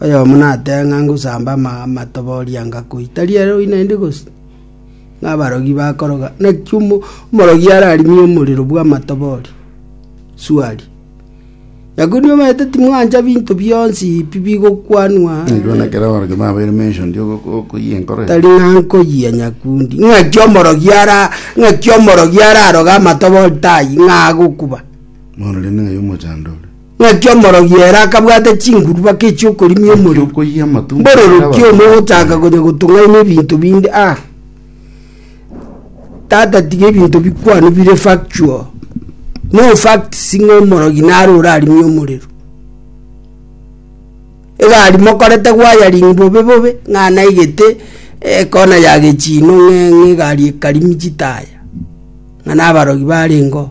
Oyomo natebe ng'a ngosamba amato boria ngakoi, tari ere oyio naende gose? Ng'a abarogi bakoroga, naki omo- omorogi ararimie omorero bw'amato boria? Swali. Nyakuri nibaete timwancha binto bionsi pi bigokwanwa Nigwe na kera abarogi babeire mentioned ogo- okoyia enkoro eye. tari ng'a nkoyia nyakundi. Ng'aki omorogi ara ng'aki omorogi araroge amato boria tai ng'a agokuba? Bono rende ng'ai omochando ore? Naki omorogi ere akabwate chinguru baka echi'okorimia omorero, mbororokia omo ogochaka konya gotung'aina ebinto binde. Ah, tata tiga ebinto bikwane bire factual. No facts ng'a omorogi nare orarimie omorero. Egari mokorete gwayaring bobe bobe, ng'a naigete ekona ya gechino ng'a egari ekarimi chitaya, ng'a nabarogi barengeo.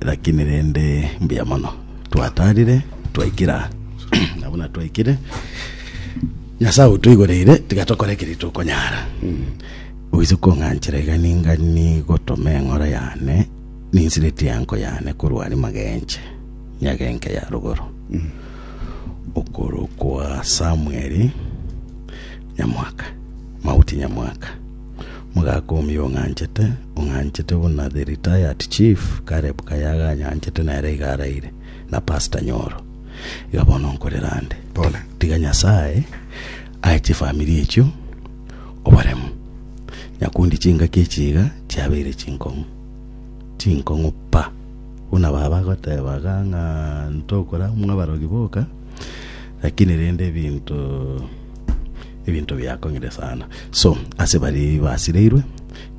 Lakini rende mbuya mono twatarire twaikira na buna twaikire nyasae outoigoreire tiga tokore ekeria tokonyara oise kong'anchera iga ninga nigotoma eng'ora yane ninsiretie enko yane korwa aria magenche nyagenke ya rogoro okorokwa samueli nyamwaka mauti nyamwaka Mogaka omio ong'anchete, ong'anchete buna the retired chief Caleb Kayaga anyanchete nere iga araire, na pastor Nyoro. Iga bono nkorera ande. Pole. Tiga Nyasaye ae chifamiri echio oboremu. Nyakundi chingaki echi iga chiabeire chinkong'u. Chinkong'u pa. Buna baba agotebaga ng'a ntokora mwa abarogi boka, lakini rende ebinto Ebinto biakong'ire sana. So, ase baria basireirwe,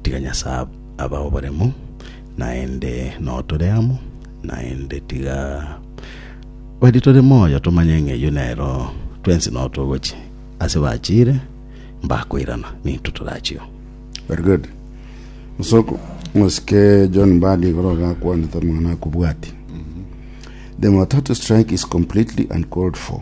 tiga Nyasae abae oboremu, naende noo tore amo, naende tiga baria tore moyo tomanye ng'a eyio nero twensi noo togochia. Ase bachiire, mbakoirana, nintwe torachio. Very good. Osoko, omosike John Mbadi igoro gakwanete omong'ina akobwati. The Matatu strike is completely uncalled for.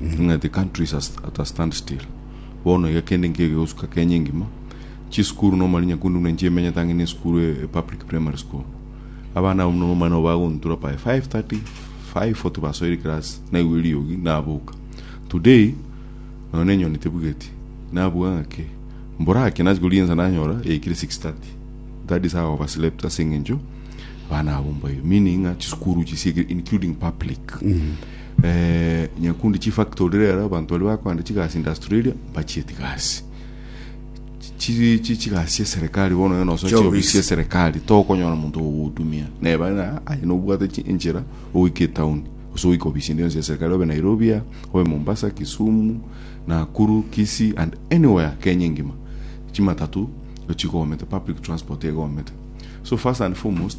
Ng'a the country is at a stand still, bono iga kende nkeiyo gegosuka Kenya engima, chisukuru na omorero nyakunde buna enchera emenyete ang'e na esukuru e public primary school. Abana abwo buna nomobani obo bagontura by 5:30, 5:40 basoire class naigwa eriogi naboka. Today nonya na enyoni tebugeti, nabuga ng'aki? Mborake nachi koria ensa nanyora yaikire 6:30. That is how over slept ase eng'encho abana abwo mbayo. Meaning ng'a chisukuru chisiekire including public. Nyakundi chifactory rero abanto baria bakoenda chigasi in Australia mbachieti gasi chigasi chia serikali bono onye nosoa chiofisi chia serikali tokonyora monto ogogotumia neba na aye nobwate enchera ogoika etown gose ogoika ofisi ende yonsi ya serikali obe Nairobi obe Mombasa Kisumu Nakuru Kisii and anywhere Kenya engima chimatatu nigo chigomete public transport egomete so first and foremost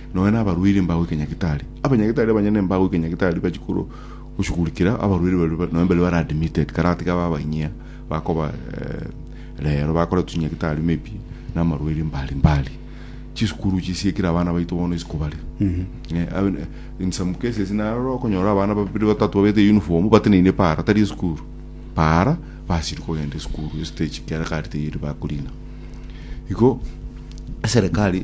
Nonya nabarwaire mbagoike Nyagetari. Abanyagitari abanyene mbagoike Nyagetari bachie korwa goshugurikera abarwaire baria nonya baria bare admitted karatiga babainyia bakoba rero bakore tunyagitari maybe namarwaire mbari mbari chisukuru chisiekire abana baito bono isiko bare in some cases narora okonyora abana babiri batatu babete uniform bateneine para tari esukuru para basiri kogenda esukuru estage kiara kari teyeri bakorina igo eserekari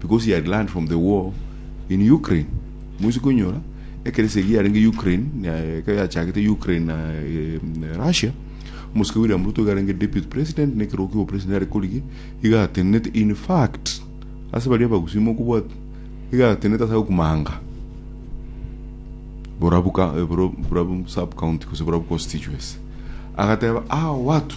because he had learned from the war in Ukraine moise konyora ekeresi egi yarenge Ukraine eh, ekero yachagete Ukraine na eh, na Russia omosike William Ruto iga arenge deputy president na ekerogo kia president are korigi iga atenenete in fact ase baria abagusii mokobwata iga atenenete ase agokumanga Borabu ka- eh, Boro- Borabu sub county gose Borabu constituency agateba aa watu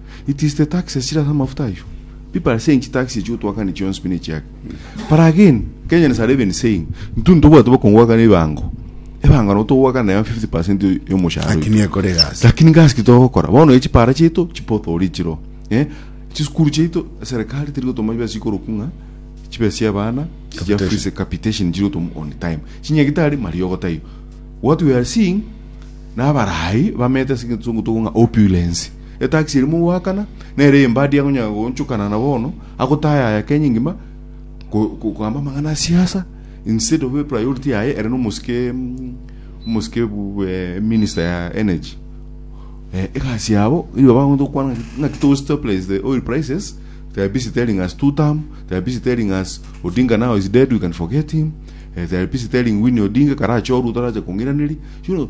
It is the taxes chire ase amafuta ayio. People are saying chi taxi echi gotwakani chionsi pi ne chiake. But again, Kenyans are even saying, ntu ntobwate bokongwakana ebango. Ebango nabo togwakana naye 50% ya omoshahara oito. Lakini ekore egasi. Lakini gasi ki togokora? Bono echi para chiaito chipothori chiro. Eh? Chisukuru chiaito serikali teri gotoma chibesa chikoroku ng'a chibesa chia abana chia Capitation. fees capitation chiri gotoma on time. Chinyagitari mariogo taiyo. What we are seeing na abarai bamete ase egetungutu ng'a opulence. Etaxi erimo goakana, nere eyembadi akonyara goonchokana na bono, agotayaya Kenya engima, ko- ko- kogamba amang'ana a siasa, instead of ebe priority yaye ere nomosike mm, omosike bu- eh, minister ya energy. Eh, egasi yabo nigo bagonto gokwana ng'a- ng'aki to stabilize the oil prices they are busy telling us two term they are busy telling us odinga now is dead we can forget him eh, they are busy telling winnie odinga karache orwe torache kong'iraneria you know,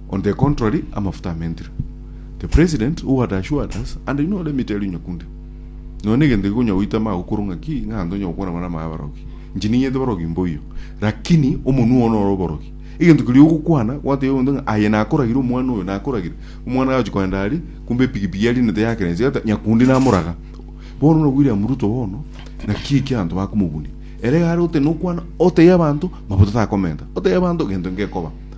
On the contrary, amafuta amentire. The President who had assured us, and inwe ore emito eria onyakunde. Nonya negento gikonya goita amaago korwa ng'aki, ng'a ntonya gokwana bare amaya abarogi. Inche ninyete barogi mboiyo. Lakini omonwa one ore oborogi. Egento keria ogokwana, gwatebia omonto ng'a aye nakoragire omwana oyo, nakoragire. Omwana agachi kogenda aria, kumbe epikipiki yarinete yakerensia yata, nyakundi namoraga. Bono na William Ruto bono, naki eki abanto bakomobunia. Ere iga are goteba nokwana, otebie abanto, mafuta takomenta. Otebie abanto, gento ngekoba.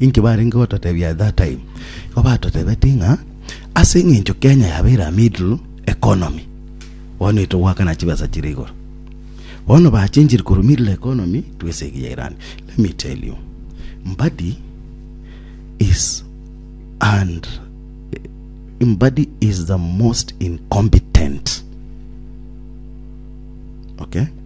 Inki barenge gototebia at that time? Igo batotebeti ng'a ase eng'encho Kenya yabeire a middle economy, bono intwe goakana chibesa chire igoro. Bono bachenchiri korwa middle economy to esegi ya Iran. Let me tell you, Mbadi is and Mbadi is the most incompetent. Okay?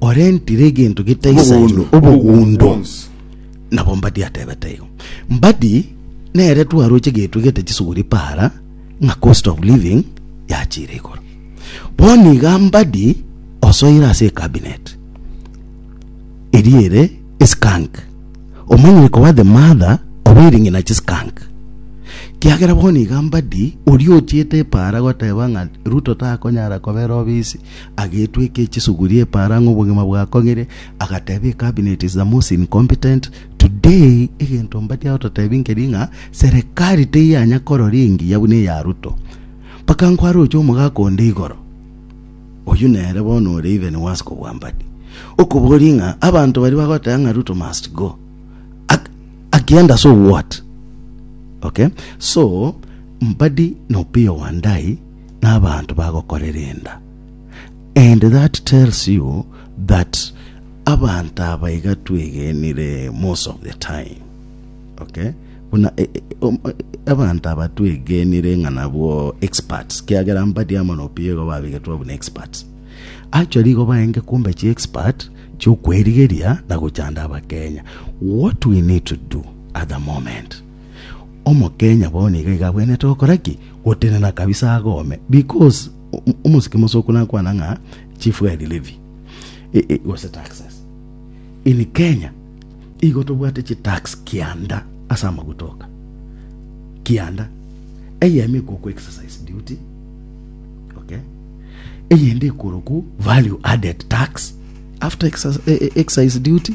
orentire egento getaisairwe obogundo. Nabo Mbadi atebete igo. Mbadi nere twaroche egento egete chisuguri para ng'a cost of living yachire igoro. Bono iga Mbadi osoire ase ecabinet eria ere eskank. Omanyire koba the mother of ering'ina chiskank. Kiagera bono iga Mbadi oria ochiete epara goteba ng'a Ruto takonyara kobera obisi Agetweka echisuguri epaara ng'a obogima bwakong'ire, agateba ecabinet is the most incompetent. Today egento mbadi agototebi nkeri ng'a serikali teyanya korora engiya buna eya Ruto. Mpaka nkwaroche omogaka onde igoro, oyio nere bono ore even worse kobua mbadi, okoboria ng'a abanto baria bagoteba ng'a Ruto must go, Ak- akienda so what? Okay? So, mbadi na Opiyo Wandayi nabanto bagokorera enda and that tells you that abanto aba iga twegenire most of the time okay buna e, e, um, e, abanto aba twegenire ng'a nabwo experts kiagera mbadi amo nopiego babigetwa buna experts actually igo baenge kumbe chi expert chiokwerigeria na gochanda abakenya what we need to do at the moment Omokenya bono iga iga abwenerete gokora ki? Gotenena kabisa agome because omosike mosoku nakwana ng'a chief guide levy e- e- gose taxes in Kenya igo tobwate chitax kianda ase amaguta oka kianda eyemo ekwo ku exercise duty okay eyende ekoroku value added tax after exerci- e- e- excise duty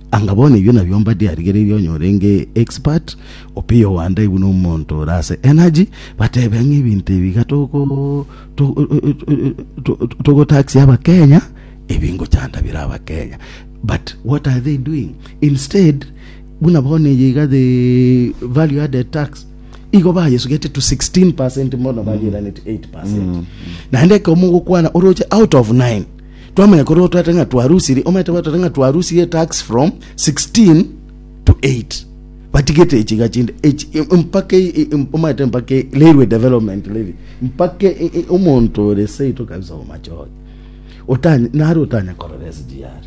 Anga bono ebio nabio mbadi arigereire onye orenge expert opiyo Wanda ibu nomonto ore ase energy batebe ng'a ebinto ebi iga toko togo tax abakenya ebi ngochanda bire abakenya but what are they doing instead buna bono eye iga the value added tax igo bayesugete to 16 percent bono barigeranete 8 percent naende ekero mogokwana oroche out of 9 Twamanya korwa otwete ng'a twarusiri, omanyete goteta ng'a twarusiri etax from 16 to 8. Batigete echiga chinde, echi- im- mpaka e- e- im- omanyete mpaka e- railway development levy, mpaka e- e- omonto ore seito kabisa omachoge. Otany- nare otanya korora SGR.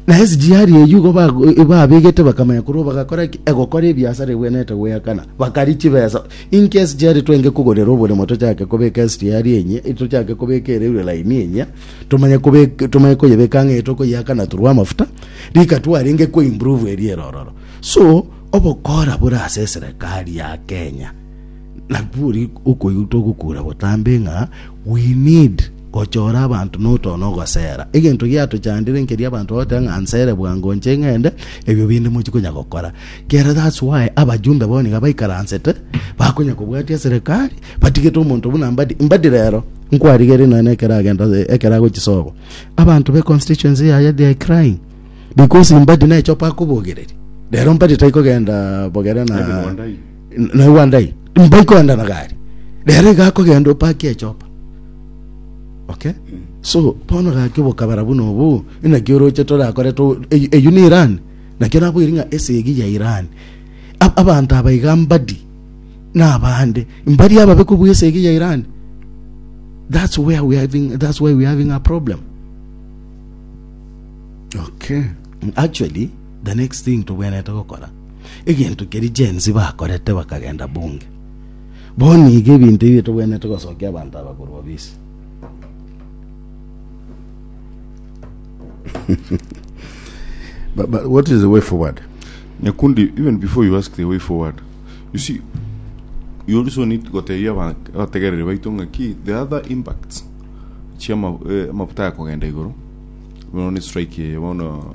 Na ase chiaria eyio igo ba- babegete bakamanya korwa bagakora ki? egokora ebiasara ebwenerete goeakana, bakaria chibesa. Inki ase chiaria twenge kogorera oboremo tochake kobeka ase chiaria enye, tochake kobeka ere ire laini enye, tomanye kobek- tomanye koyebeka ang'e tokoyeakana through amafuta, rika twarenge ko improve eria ere ororo. So, obokora bore ase eserekari ya Kenya. Nakwori okoigwa togokura botambe ng'a we need gochora abanto notona ogosera. Egento giatochandire nkeria abanto bagoteba ng'a nsere bwango nche ng'ende, ebio binde mochi konya gokora. Kere that's why abajumbe bono iga baikaransete bakonya kobwatia serikali batigete omonto buna Mbadi. Mbadi rero nkwarigerie nonya ekero agenda ekero agochia sobo abanto be constituency yaye they are crying because Mbadi nechopa akobogereria. Rero Mbadi taikogenda bogere na Ebi bonde aye. naye gwandai mbai koendana gari rero iga akogenda opaki echopa okay so bono gaki obokabara buna obu inaki oroche torakore to eyi- eyio ni iran nakio naboiri ng'a esegi ya iran Ab- abanto aba iga mbadi nabande mbari ababe kobua esegi ya iran that's where we are having, that's why we are having a problem okay actually The next thing tobwenerete gokora, egento keria Gen Z bakorete bakagenda bunge. Bono iga ebinto ebio tobwenerete gosokia abanto aba korwa obisi. But, but what is the way forward? Nyakundi, even before you ask the way forward, you see, you also need gotebia aba- abategereri baito ng'aki the other impacts chia ama- eh, amafuta ya kogenda igoro bono ni strike eye bono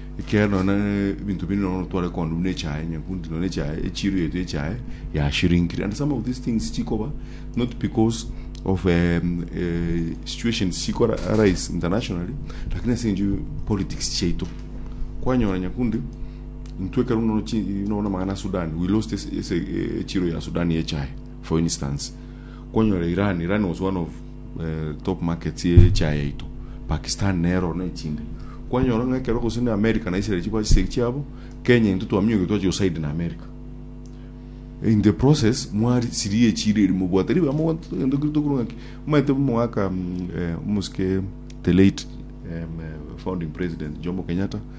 Ekeene, nonya nebinto binde nonya otware kondi buna echae, nyakundi nonya echae, echiiro yaito y'echae yashirinkire. And some of these things chikoba not because of um, uh, situations chiko arise internationally, lakini ase enju politics chiaito. Kwanyora nyakundi intwe ekero nono chi- nono magana Sudan, we lost ese- ese- echiiro ya Sudan y'echae, for instance. Kwanyora Iran, Iran was one of eh, top markets ye chai yaito. Pakistan nero na echinde. Kwanyora ng'a ekero gose ne America na Israel chiba chisegi chiabo, Kenya into twaminyoki twachi goside na America. In the process mwari siri echire eri mobwate ribe amo gwanto togende kiri tokuru ng'aki maete mwaka mm, eh, omusike the late em, eh, founding president Jomo Kenyatta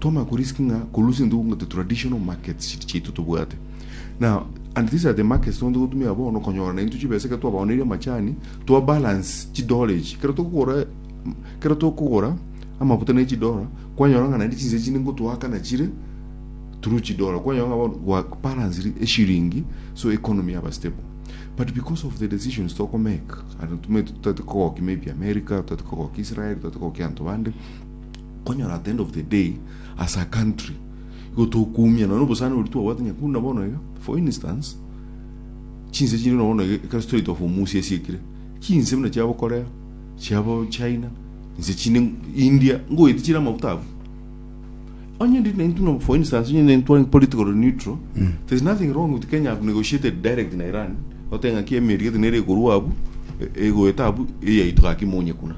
Twamanya korisk ng'a korusia into into traditional markets chiri chiaito tobwate na and these are the markets tobonto gotumia bono konyora nainto chibesa ekero twabaoneire amachani twa balance chidora echi ekero tokogora ekero tokogora amafuta ne chidora kwanyora ng'a naende chinsa chinde ngotoaka nachire through chidora kwanyora ng'a bono gwa balance eshiringi so economy yaba stable but because of the decisions toko make and tumanyete totati kogokia maybe America totati kogokia Israel totati kogokia abanto bande Okonyora at the end of the day as a country igo tokoumia nonya obosani oria twabwate nonya buna bono iga for instance chinse chinde nonya bono iga ekero strait of hormuz yasiekire chinse buna chiabo korea chiabo china inse chinde india ngoeti chire amafuta abwo onye ndi naintu no for instance onye naintu twari political neutral there's nothing wrong with kenya have negotiated direct na iran otenga ki emeri gete nere ekorwa abu e- egoeta abu eyaito gaki monye kuna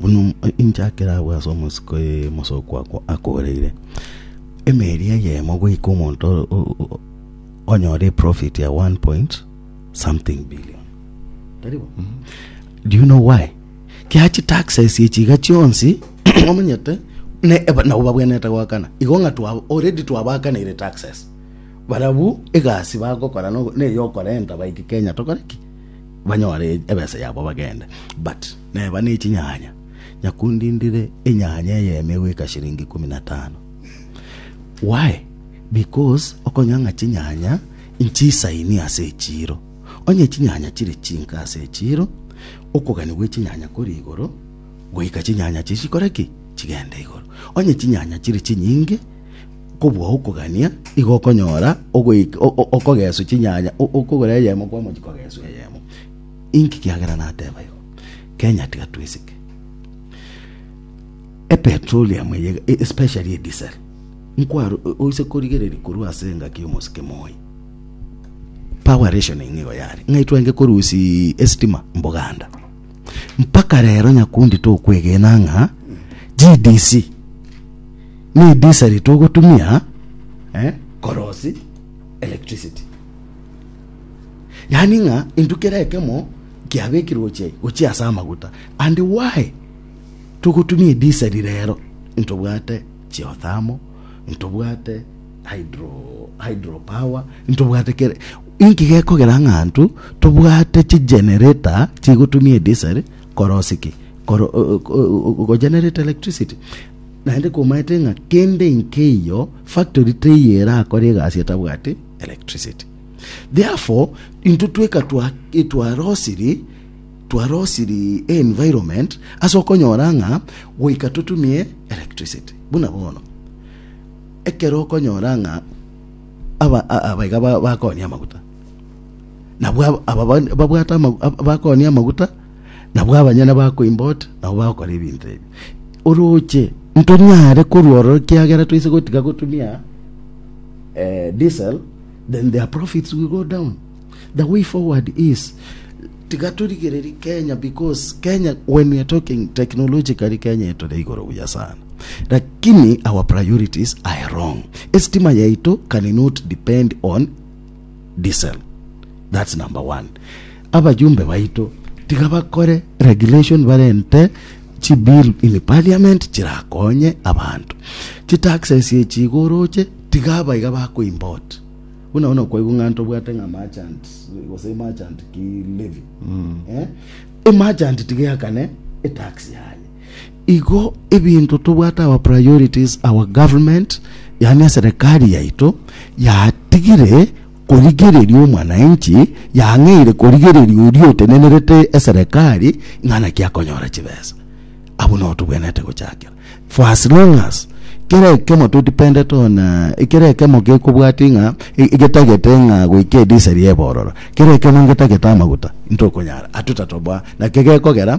Buna inche akere agwo ase omosiko omosooku okwo akoreire, emeeri eyemo goika omonto onyore profit ya one point something billion. Tari bo? Do you know why? Kia chitaxes echi iga chionsi omanyete ne eba- nabo babwenerete goakana igo ng'a twa already twabaakanire taxes barabwo egasi bagokora nogo- neyokorenta baike kenya tokore ki banyore ebesa yabo bagende but Neba ne chinyanya, nyakundindire enyanya eye emegwika shilingi ikomi na tano. Why? Because okonya ng'a chinyanya nchisaini ase echiiro. Onye chinyanya chire chinke ase echiiro, okogani gwe chinyanya kori igoro, goika chinyanya chiria chikore ki? Chigende igoro. Onye chinyanya chire chinyinge, kobua okogania, igo okonyora ogoika okogeswa chinyanya, okogora eyemo kwamo chikogeswa eyemo. Inki kiagera nateba igo? Kenya tiga twisike. Epetroleum eye e- especially edisel. Nkwaro o- oise korigereria korwa ase engaki y'omosike moi. Power rationing igo yare. Ng'ai twenge korusi estima mboganda. Mpaka rero nyakundi tokwegena ng'a GDC ni diesel togotumia eh, korosi electricity. yaani ng'a intwe kera ekemo kiabekirwe gochia gochia ase amaguta and why togotumia edisel rero intobwate geothermal intobwate hydro hydro power intobwate kere inki gekogera ng'a intwe tobwate chigenerator chigotumia edisel korosia ki koro gogenerate electricity naende komaete ng'a kende inkeiyo factory teiyo erakore egasi etabwati electricity Therefore, intwe tweka twarosiri twarosiri environment ase okonyora ng'a goika totumie electricity. Buna bono, ekero okonyora ng'a aba abaiga bakonia amaguta, nabwo aba babwate bakonia amaguta Nabwo abanyene bakoimba ota, nabo bagokora ebinto ebi. Orooche, ntonyare korwa ororo ekiagera toise gotiga gotumia eh, diesel, then their profits will go down. The way forward is tiga torigererie Kenya because Kenya when we are talking technologically Kenya etore igoro buya sana. Lakini our priorities are wrong. Estima yaito cannot depend on diesel that's number one abajumbe baito tiga bakore regulation barente chi bill in parliament chirakonye abanto chi taxes echi igoroche tiga abaiga bako import buna buna kwaigwa ng'anto bwate ng'a merchant gose merchant ki levy eh e merchant tiga yakane e tax yaye Igo ebinto tobwate our priorities our government yaani eserekari yaito yatigire korigereria omwanainchi yang'eire korigereria oria otenenerete eserekari ng'a naki akonyora chibesa abwo nao tobwenete gochakera for as long as kera ekemo todependete on ekera ekemo gekobwati ng'a e- egetagete ng'a goika ediseri ebororo kera ekemo ngetagete amaguta intokonyara atutatobwa naki gekogera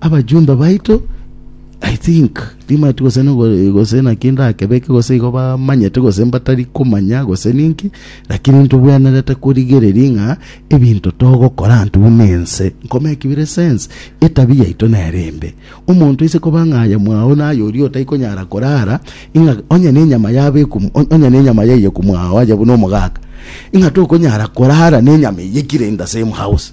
Abachumba baito, I think, timaeti gose nogo- gose naki ndakebeke gose igo bamanyete gose mbatari komanya gose ninki, lakini ntobwenerete korigereria ng'a ebinto togokora ntwe buna ense nkoma ekebire sense, etabia yaito nere embe. Omonto aise koba ng'a aye mwao naye oria otai konyara korara, ing'a onye na enyama yabekwa omo- on- onye na enyama yaiyekwa mwao aye buna omogaka, ing'a tokonyara korara na enyama eyio ekire in the same house.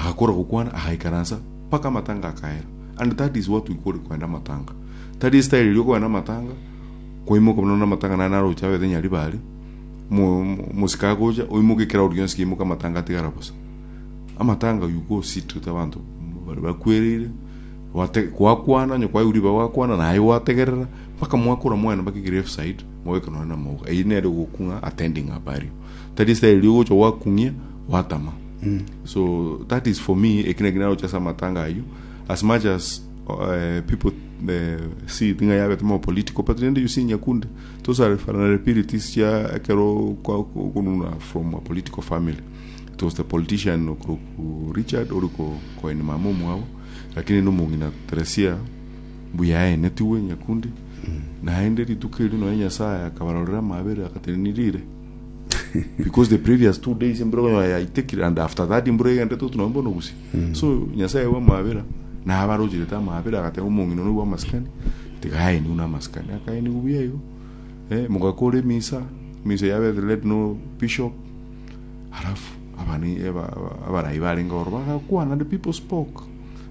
Agakora gokwana agaikaransa mpaka amatanga akaera and that is what we call kwenda amatanga. Tari style eria okogenda amatanga kwaimoka buna na amatanga nane aroche abete nyari bare mosika agocha oimoke crowd yonsi keimoka amatanga atigara bosa. Amatanga you go sit with abanto bare bakwereire gwakwana onye kwaigure iba gwakwana naye gwategerera mpaka mwakora mwena mpaka grave side mwabeka nonye na amauga. Eyio nere ogokung'a attending a burial. tari style ogocha gwakung'ia gwatama so that is for me ekina kina gocha ase amatanga ayio as much as uh, people uh, see thing'a yabete more political but rende you see nyakunde those are vulnerabilities cia ekero kwa- ku- kununa from a political family it was the politician okuruku richard ori ko- koini mama omwabo lakini nomong'ina teresia Mbuyaenetigwe Nyakundi, naende rituko erio nonya Nyasae akabarorera amabere agatenenia riire. Because the previous two days embura konyora yaitekire and after that embura egendete otu nabo mbono gusii. Mm. So Nyasae w'amabera nabarocherete amabere agateba omong'ina one bw'amasikani tigaeniwe n'amasikani akaeniwe buya igo. Eh, mogakora emisa, emisa ya Beth led no bishop. Halafu abani aba- aba- abarai barenge oro bagakwana the people spoke.